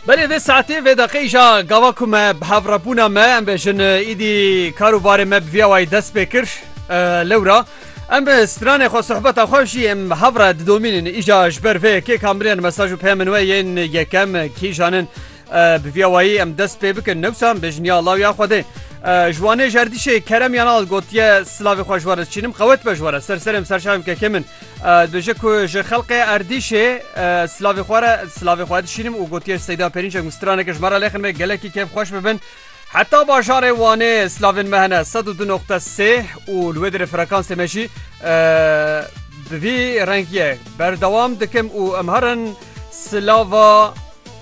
Belê vê saetê vê deqê îşa gava ku me bi hevrebûna me em bêjin îdî kar û barê me bi vîya wayî dest pê kir lewra em bi stranê xwe sohbeta xwe jî em hevre didomînin îşa ji ber vê yekê kamilên mesaj û peyamên we yên yekem kîjan in Bi vî awayî em dest pê bikin newsa em bi jiniya law ya Xwedê. Ji wanê jerdîşê kerem yan al gotiye silavê xwe ji were çînim qewet be ji were ser serêm serçavêm kekê min. Dibêje ku ji xelqê erdîşê silavê xwe re silavê xwe dişînim û gotiye seyda pênîncek û straneke ji me re lêxin me gelekî kêf xweş bibin. Heta bajarê Wanê slavên me hene sed û du noqte sê û li wê dirê frekansê me jî bi vî rengiyê berdewam dikim û em herin silava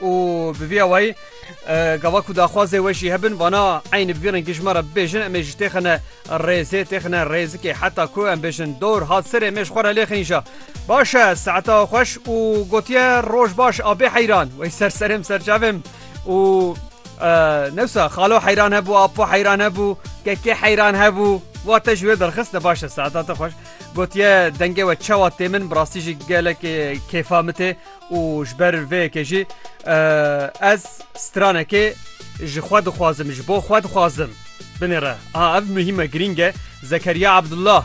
û bi vî awayî gava ku daxwazê we jî hebin vana eynî bi vî rengî ji me re bibêjin em ê jî têxine rêzê têxine rêzikê heta ku em bêjin dor hat serê mêj xwe re lê xînja baş e saeta xweş û gotiye roj baş a bê heyran wey ser serêm serçavêm û newsa xalo heyran hebû apo heyran hebû kekê heyran hebû wa te ji wê derxist ne baş e saeta te xweş gotiye dengê we çewa tê min bi rastî jî gelekê kêfa min tê û ji ber vê yekê jî ez stranekê ji xwe dixwazim ji bo xwe dixwazim binêre a ev muhîme girîng e Zekeriya Abdullah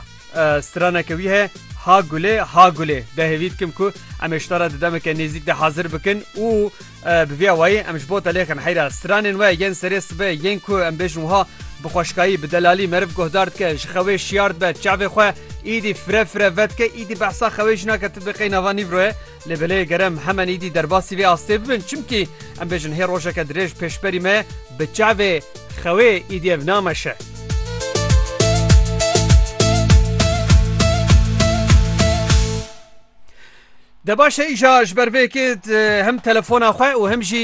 straneke wî heye ha gulê ha gulê de hêvî dikim ku em ê şitara di demeke nêzîk de hazir bikin û bi vî awayî em ji bo te lêxin heyra stranên we yên serê sibe yên ku em bêjin wiha bi xweşkayî bi delalî meriv guhdar dike ji xewê şiyar dibe çavê xwe Îdî fire fire vedike, îdî behsa xewê jina ke ti biqey nava nîvroye. Lê belê gerem hemen îdî derbasî vê astê bibin. Çimkî em bêjin hê rojeke dirêj pêşberî me bi çavê xewê îdî ev nameşe. Debaşe îja ji ber vê yekê hem telefona xwe û hem jî